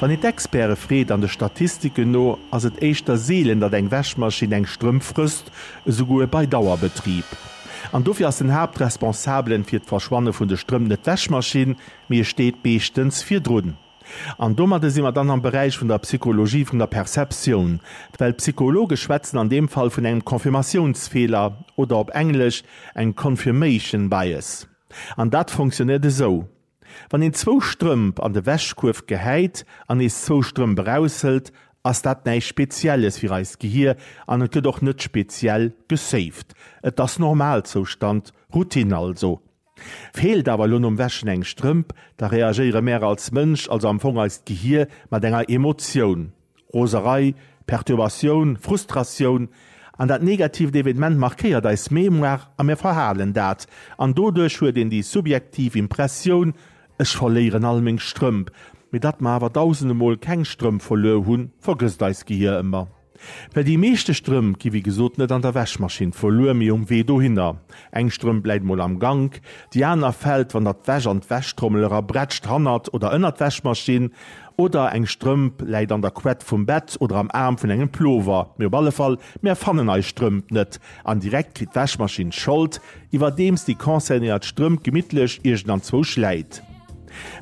Wann een d'Experte freet, an de Statistiken no ass et éischter seelen, datt eng Wäschmaschinn eng Strëmp frësst, esouguer bei Dauerbetrib. An dofir ass den Haaptresponsabelen fir d'Verschwanne vun de Strëmp net d'Wäschmaschinn, mee e steet meeschtens virdrun. An domadde si mer dann am Beräich vun der Psychologie vun der Perceptioun, well d'Psychologe schwätzen an deem Fall vun engem Confirmatiounsfeeler oder op Englesch eng Confirmation Bias. An dat fonctionnéiert esou. Wann een zwou Strëmp an de Wäschkuerf gehäit an nees zwou Strëmp eraushëlt, ass dat näischt Spezielles fir eist Gehir an et gëtt och net speziell gesaved. Et ass Normalzoustand, Routine also. Feelt awer elo nom Wäschen eng Strëmp, da reagéiere mär als Mënsch, also am Fong eist Gehir, mat enger Emotioun. Roserei, Perturbatioun, Frustratioun an dat negatiivt Evenement markéiert eis Mémoire a mir verhalen dat. An doduerch huet een déi subjektiv Impressioun, ech verléieren all meng Strëmp. Mee datt mer awer dausende Mol keng Strëmp verluer hunn, vergësst eist Gehier ëmmer. Well déi meeschte Strëmp gi wéi gesot net an der Wäschmaschinn verluer, mee um Wee dohinner. Eng Strëmp läit mol am Gank, déi aner fält, wann der d'Wäsch an d'Wäschtrommel era brätscht, hannert oder ënnert d'Wäschmaschinn. Oder eng Strëmp läit an der Quett vum Bett oder am Aarm vun engem Plover. Mee op alle Fall, mär fannen eis Strëmp net. An direkt kritt d'Wäschmaschinn d'Schold, iwwerdeems déi concernéiert Strëmp gemittlech iergendanzwou schläit.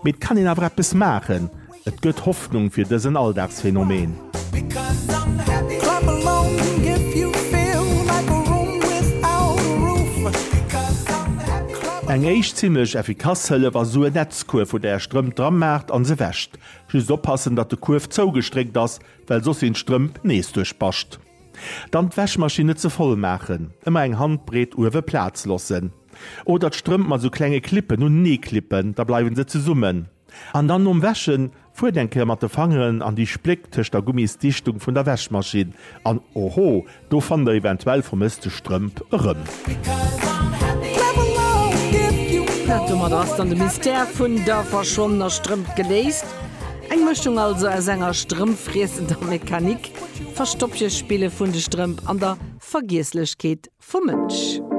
Mee et kann een awer eppes maachen. Et gëtt Hoffnung fir dësen Alldagsphänomen. Eng éischt zimlech effikass Hëllef ass sou e Netz. D'Kuerf hutt Är Strëmp dra maacht an se wäscht. Just oppassen dat de Kuerf zougestréckt ass, well soss sinn d'Strëmp nees duerch Bascht. Dann d'Wäschmaschinn net ze voll maachen, ëmmer eng Handbreet uewe Plaz lossen. Oder d'Strëmp mat sou klenge Clippen un nee klippen, da bleiwen se zesummen. An dann nom Wäschen Fuert eng Kéier mat de Fangeren an déi Spléck tëscht der Gummisdichtung vun der Wäschmaschinn an oho, do fannt der eventuell vermësste Strëmp erëm. Domat ass dann de Mystère vun der verschwonnener Strëmp geléist. Eng Mëschung also aus enger strëmpffriessender Mechanik, Verstoppchespille vun de Strëmp an der Vergiesslechkeet vum Mënsch.